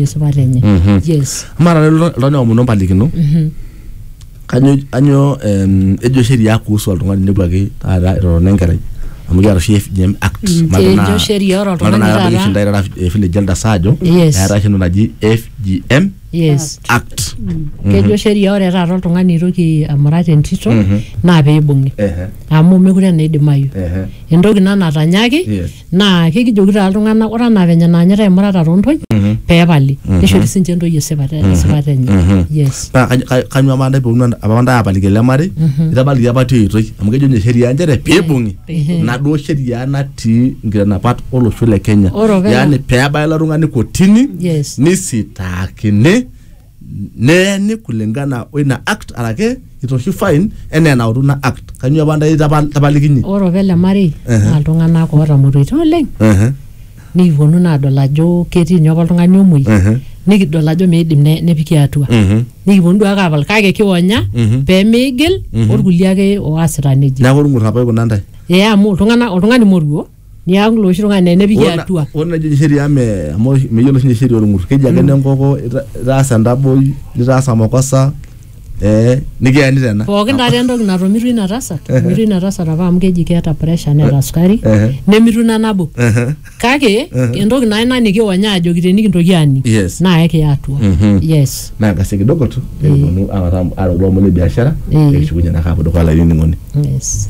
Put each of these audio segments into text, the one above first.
Yosipa lenye. Yes. amaa taata ilo oltung'ani aomonu empalikino kanyo anyo em, ejo sheria kuhusu oltung'ani nepuaki taata etotona enkerai amu kiata oshi FGM act Mm, Majo naa- kejo sheria ore oltung'ani majo naa taata- keishindae taata eh, village elders aajo Yes. eetae oshi entoki naji FGM Yes. act Kejo sheria ore taata oltung'ani oitoki amurat entito naa peibung'i. Ehe, Amu mekure naa idimayu. ehe. Entoki ina natanyaki Yes. naa kekijoki taa iltung'anak ore anaa venye naanyitai imurata toontoyie Mhm. peepali Mhm. nishori sinche intoyie esipata Mhm. esipata enye Mhm. yes paa kany- kany- kanyoo apa ntae peunu ent- apa ntae apaliki ele marei Mhm. itabaliki apa tia oitoi amu kejo ninye sheria nchere peibung'i Peibung'i. naduo sheria natii nkitanapat olosho le kenya Ore openy- yaani peebaya ilo tung'ani kotini yes nisitaakini neeni kulingana o ina act arake itoshi fine enaa enautu ina act kanyio apa ntae tapa- tapalikinye ore opa ele marei Ehe. naa iltung'anak ootamoruoitie oleng Ehe, nikiponu naa adol ajo ketii ninye apa oltung'ani omuoi ehe, nikidol ajo meidim ne- nepiki atua mhm. nikiponu duo ake apal kake kionya Mhm. pee meigil Mhm. orkulie ake oasita nejia neeku irng'ur apa ikuna ntae ee amu iltung'anak oltung'ani moruo niaku loshi tung'ani enepiki Ore na- atua ore najo oshi sheria me amu oshi- meyiolo sinye sheria orng'ur keji ake nenkoko ita- itaasa entaboi nitaasa makosa eh nikiyani tena pookin taata entoki natomitui ina tasat etomitui ina tasat apa amu keji keeta pressure neeta sukari Ehe. nemitu ina nabo Ehe. kake entoki naa ina nikiwonya ajoki tenikintoki aning Yes. naa ekiya atua Mhm. yes naa kasi kidogo tu pekiponu awatam arokulo omon le biashara Eh. ekishukunye naa kaapuo dukuya laining'oni yes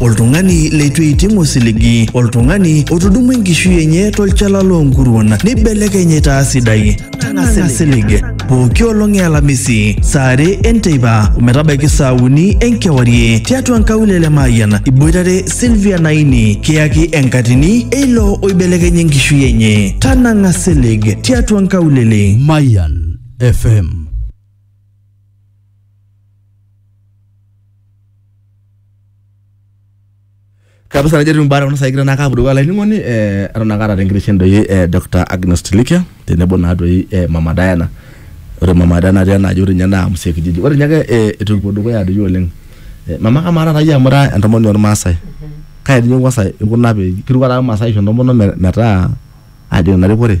oltung'ani leitu eiting osiligi, oltung'ani otudumua enkishui enye tolchala loo nkuruon neibelekeny aitaa sidai. Tang'asa silig pooki olong e Alamisi saa are enteipa ometabaiki saa uni enkewarie tiatua nkaulele Mayian iboitare Sylvia Naini kiyaki enkatini eilo oibelekenya enkishui enye. Tanang'a silig tiatua nkaulele. Mayan FM. kabisa najo etiu mbaa kuna saai kigira naake apuo dukuya olainining'oni eh, eton ake aata tenkiteshen doi eh, Dr. Agnes Tilikia tenebo naa doi eh, Mama Diana ore Mama Diana natii enaaji ore ninye naa Mzee Kijiji ore ninye ake eh, etu kipuo dukuya doi oleng eh, mama kamaa taata iyie amu ira entomononi ormaasai kai doi inye kwanza ikuna pee kiruk taata irmaasai aisho entomononi me- metaa ajing ina rikore